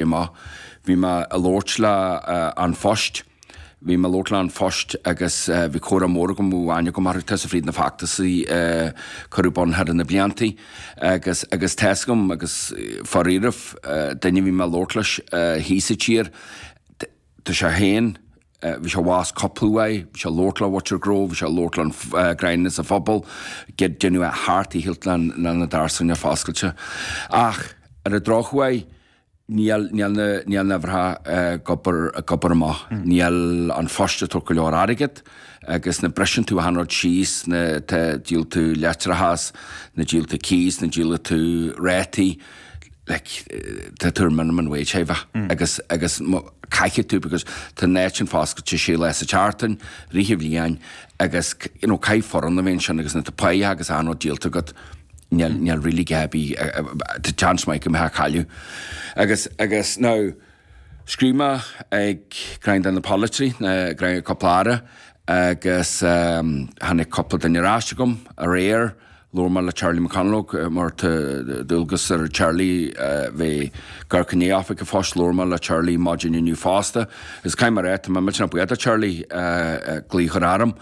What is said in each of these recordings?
Bhí mé. Bhí mé a' labhairt le An Phost. Bhí mé a' labhairt le An Phost agus bhí comhrá mór agam, bhí aithne agam orthu. Tá's a'm fríd na feachtasaí a cuireadh bun thar na bliantaí agus, agus tá's agam agus dáiríribh duine a bhí mé a' labhairt leis thíos sa tír, tá sé féin, a. Bhí sé abhus cúpla uair, bhí sé ag labhairt le Bhutcher Grove, bhí sé ag labhairt le dream ins an phobal, caidé a dhéanfadh é thart i hilt le na doirse a choinneáil foscailte. Ach ar an drochuair, níl níl na níl na huimhreacha ag obair ag obair amach, níl An Phost ag tabhairt go leor airgead agus nuair a bhriseann tú achan rud síos, nuair a dhíolann tú leictreachas, nuair a dhíolann tú cíos, nuair a dhíolann tú rátaí, like, tá tú ar minimum wage, hi va, agus, agus caithfidh tú, because tá an áit sin foscailte sé lá sa tseachtain, fríd an bhliain, agus, you know, caithfidh foireann a bheith ansin agus nuair atá páigh agus achan rud díolta agat, níl, níl really a dhath ar bith, tá seans maith go mbeidh tú ag cailleadh. Agus, agus now, scríobh mé ag dream de na polaiteoirí, ag cúpla Aire, agus tháinig cúpla duine ar ais agam aréir, labhair mé le Charlie McConalogue mar tá dualgas ar Charlie bheith ag amharc i ndiaidh oifig an phoist, labhair mé le Charlie maidin inniu fosta agus caithfidh mé a ráit, tá mé millteanach buíoch do Charlie, glaoch a chur orm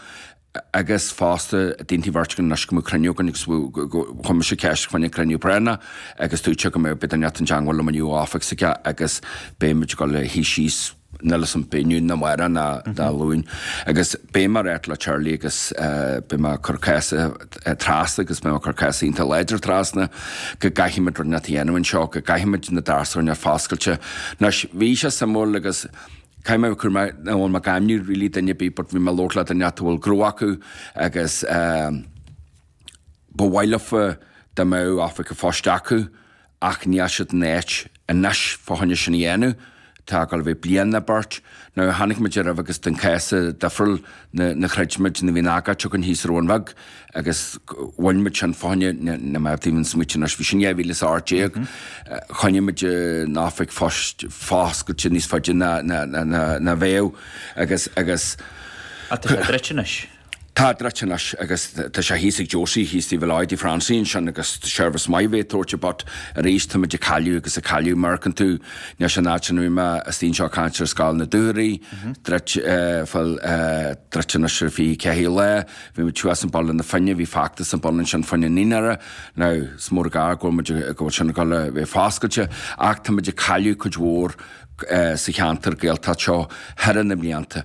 agus fosta d'aontaigh an bheirt againn anois go mbeadh cruinniú againn agus chuir mise ceist fá choinne cruinniú práinneach agus tuigtear go mbeidh duine inteacht i dteagmháil liom inniu ón oifig s'aige agus beimid ag dul a shuí síos. níl a fhios agam an mbeidh inniu nó amárach nó Dé Luain. Agus beidh mé ag ráit le Charlie agus beidh mé ag cur cás trasna agus beidh mé ag cur cás iontach láidir trasna go gcaithfimid rud inteacht a dhéanamh anseo, go gcaithfimid na doirse a choinneáil foscailte. Anois, bhí sé suimiúil agus caithfidh mé a bheith cúramach chan fhuil mé ag ainmniú really duine ar bith but bhí mé ag labhairt le duine inteacht a bhfuil gnó acu agus ba mhaith leofa dá mbeadh oifig an phoist acu ach níl siad in áit anois fá choinne sin a dhéanamh, tá ag dul a bheith bliain nó beirt, nó tháinig muid ar uibh agus tá an cás seo difriúil na nuair a throid muid nuair a bhí an agóid againn thíos sa Bhun Bheag agus bhain muid sin fá choinne na na má tá mé ag smaoiteamh anois bhí sin dhá mhíle is a ocht déag choinnigh muid an oifig phoist foscailte níos faide ná ná ná ná bheadh agus agus Ach tá sé druidte anois. Tá druidte anois agus tá sé thíos ag Josie, he's the Villard de France ansin agus seirbhís maith a bheith ag tabhairt air but arís táimid ag cailleadh agus ag cailleadh, amharcann tú anois an áit an fhuaim a astaíonn sé caint ar scoil na Dúchoraidh, druidte, bhuel druidte anois ar feadh ceithre lá, bhí muid thuas i mBaile na Finne, bhí feachtas i mbun ansin faoin naíonra, now is mór an gar go bhfuil muid, go bhfuil sin ag dul a bheith foscailte ach táimid ag cailleadh cuid mhór sa cheantar Gaeltacht seo thar na mblianta.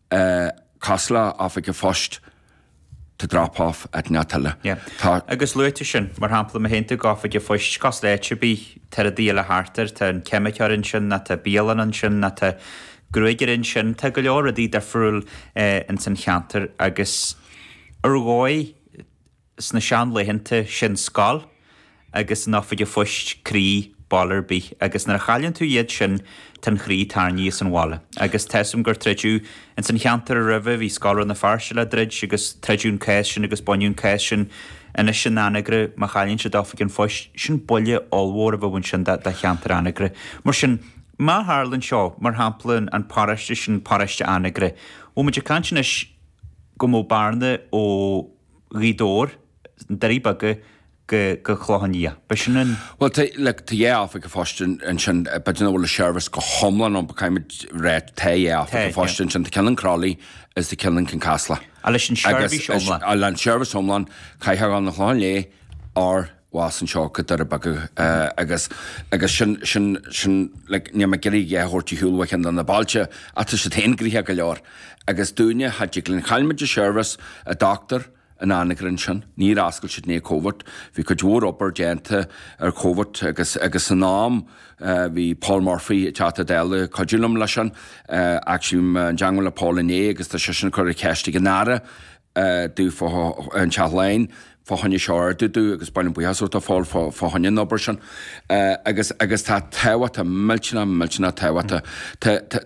a cosúil le oifig an phoist tá drop off at na tuile. Tá. Agus luaigh tú sin, mar shampla, má théann tú go hoifig an phoist cosúil le áit ar bith, tá rudaí eile thart air, tá an ceimiceoir ansin ná tá bialann ansin ná tá gruagaire ansin, tá go leor rudaí difriúil ins an cheantar agus ar dhóigh, sna seanlaethanta sin scoil agus oifig an phoist croí baile ar bith agus nuair a chailleann tú iad sin tá an croí tarraingthe as an bhaile. Agus tá a fhios agam gur troideadh ins an cheantar a roimhe bhí Scoil Rann na Feirste le druid agus troideadh an cás sin agus baineadh an cás sin anois in Anagaire má chailleann siad oifig an phoist sin buille ollmhór a bheadh ansin do cheantar Anagaire. Mar sin má tharlaíonn seo mar shampla an paróiste sin paróiste Anagaire bhfuil muid ag caint anois go mbeadh bearna ó Ghaoth Dobhair, na Doirí Beaga go Clochán Liath. B'shin an. Bhuel, tá, look, tá dhá oifig a' phoist ansin, b'fhéidir nach bhfuil an seirbhís go hiomlán ann but caithfimid rá tá dhá oifig a' phoist ansin, tá ceann in Crolly is tá ceann in Kincasslagh. Agus leis an seirbhís iomlán. Agus leis an seirbhís iomlán, chaithfeá dhul 'na Chlocháin Léith or. suas anseo go Doirí Beaga agus agus sin sin sin like níl mé ag iarraidh é a thabhairt ar shiúl ó cheann de na bailte ach tá siad féin gnoitheach go leor agus dúinne thall tigh linn chaill muid an seirbhís an dochtúra in Anagaire ansin níor oscail siad i ndiaidh Covid bhí cuid mhór obair déanta ar Covid agus agus san am bhí Paul Murphy an Teachta Dála ag cuidiú liom leis sin actually i dteagmháil le Paul inné agus tá seisean ag cur an cheist ag an Aire dúinn i dTeach Laighean fá choinne seo a ardú do agus ba mhaith liom buíochas a thabhairt do Paul fá choinne an obair sin agus agus tá sé tábhachtach millteanach millteanach tábhachtach